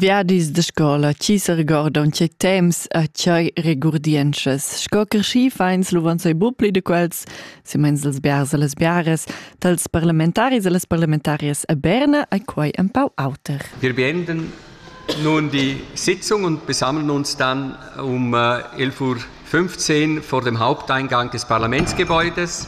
Viadis da scola chi s'regordan che temps a chai regurdientschas. Sco creschì fains luvan sei bu pli de quels, si mens els biars e les biares, tals parlamentaris e les parlamentarias a Berna ai quai un pau auter. Wir beenden nun die Sitzung und besammeln uns dann um 11.15 Uhr vor dem Haupteingang des Parlamentsgebäudes.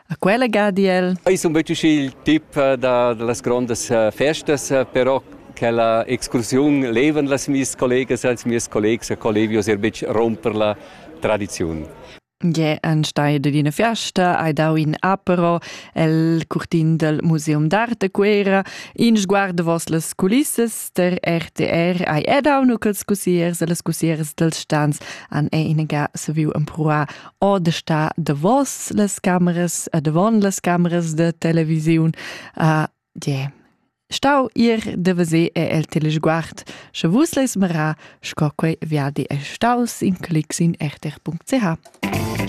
A quella ga di el: Ei sun betg il tip da, da las grondas festas, però quella excursiun levan las mies collegas als mies collegs a Colevios er betg romper la tradiziun. Ge en stai de d'ina fiasta hai dau in apero el curtin del Museum d'Arte Cuera in sguard vos las culissas der RTR hai edau nu quels cusiers e las cusiers dels stans an e inaga saviu empruar o da sta davos las cameras e davon las cameras da televisiun a die stau ir de vese e el telesguard sche vus leis mera sco quei viadi è staus in clics in chter.ch